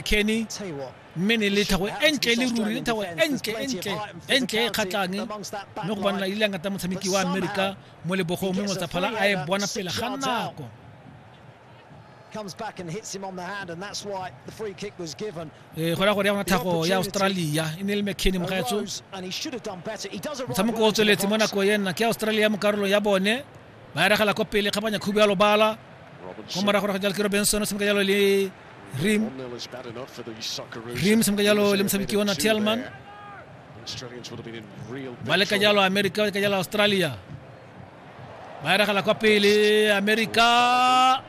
Kenny, mme ne le tlhago e ntle le ruri le tlhago e ntle e ntle e ntle e kgatlhang mme go banela ile ngata motshameki wa amerika mo lebogong mme motsaphala a e bona pele ga nako comes back and hits him on the hand, and that's why the free kick was given. Eh, go ya go ya gona thago ya australia e ne le mckenny mogaetso motshameko o tsweletse mo nako ya nna ke australia mo karolong ya bone ba eregela ko pele kgabanya khubu ya lobala ko morago go jalo ke robinson o tshameka jalo le rim rim o tshameka jalo le motshameki ona telman ba leka jalo america ba leka jalo australia ba eregela kwa pele america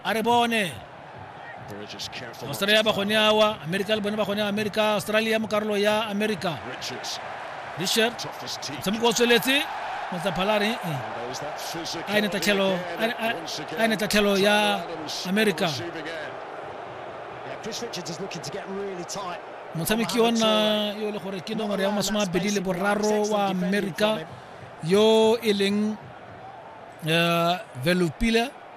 a re bone australia ba gone awa america le bone ba gone america australia mo karolo ya america richard motshameko o tsweletse motsaphalare a ene tatlhelo a ene tatlhelo ya america motshameki wa nna yo e le gore ke nomoro ya masome a bedi le boraro wa america yo e leng eh, velopile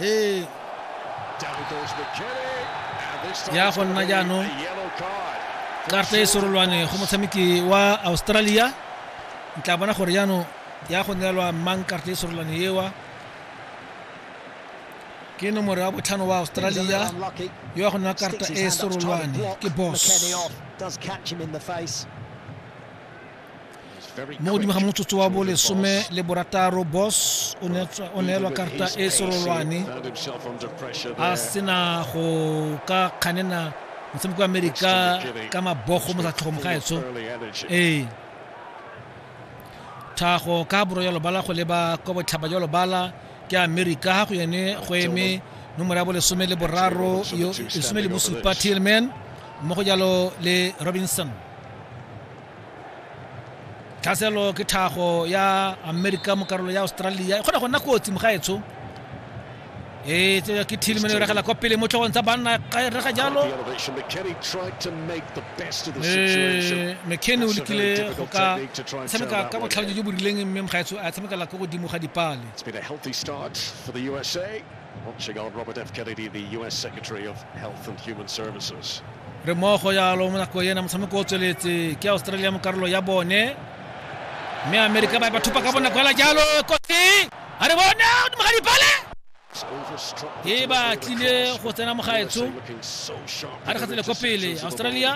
ee ya go nna jaanong karta e sorolwane go motshameki wa australia ntla bona gore jaanong ya go neelwa mang karta e sorolwane ewa ke nomoro ya botlhano wa australia yo ya go nna karta e sorolwane ke boss mo godimo ga motsotso wa bolesome le borataro boss o neelwa karta e serolwane a sena go ka kganena motshameko wa amerika ka mabogo mo satlhogo mogaetso ee thago ka boro ya lobala go leba kwa botlhaba jwa lobala ke amerika ga go yone go eme nomoro ya bolesome le boraro lesome le bosupa tillman mmogo jalo le robinson tlhaselo ke tlhago ya amerika mo karolo ya australia e kgona go nna kotsi mogaetsho ee tseo ke thilmeno e regela kwa pele mo tlhogong tsa banna ka e rega jalo Eh, mckenny o lekile go ka tshameka ka botlhale jo bo rileng mme mogaetsho a tshamekela ko godimo ga dipale re mo go yalo mo nako ena motshameko o tsweletse ke australia mo karolo ya bone mme amerika ba e ba thupa ka bonako ela jalo kotsi a re bone godimo ga dipale e ba tlile go tsena mogaetsho a re gatsele ko pele australia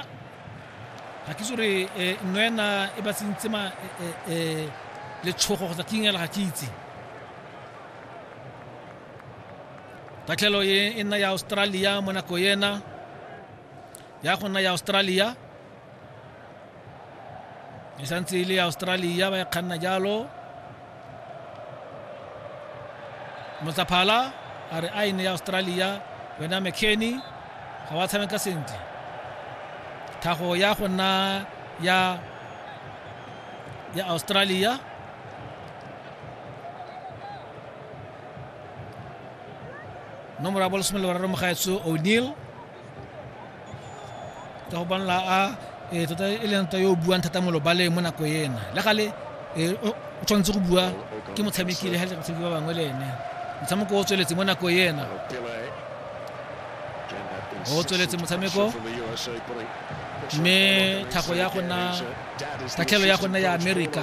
ga ke itse gore eh, nno ena e ba tsentse ma eh, eh, letshogo kgotsa ke ingela ga ke itse tatlhelo e e nna ya australia mo nako ena ya go nna ya australia e santse e le ya australia ba e kganna jalo motsaphala a re a e ne ya australia wena mckenny ga wa tshameka sentle tlhago ya go nna ya ya australia no mora bolo somelo bararo mogaetso o'neil ka go bonela a e tota e leng tota yo o buang thata mo lobaleng mo nako ena le gale e, o tshwanetse go bua ke motshameki le ga le batshameki ba bangwe le ene motshameko o tsweletse mo nako ena o tsweletse motshameko mme thago ya gona tatlhelo ya gona ya amerika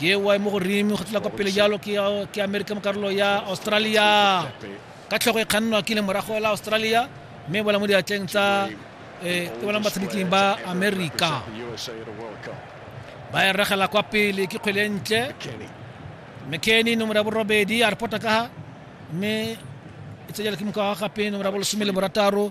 ke wa mo godimo go tla kwa pele jalo ke ke america mo karolo ya australia ka tlhogo e kgannwa ke le morago la australia mme bola mo diatleng tsa eh, ke bona batshameking ba america ba e regela kwa pele ke kgwele ntle mckenny nomoro ya borobedi a repota ka ha mme e tsejela ke moka wa gape nomoro ya bolesome le borataro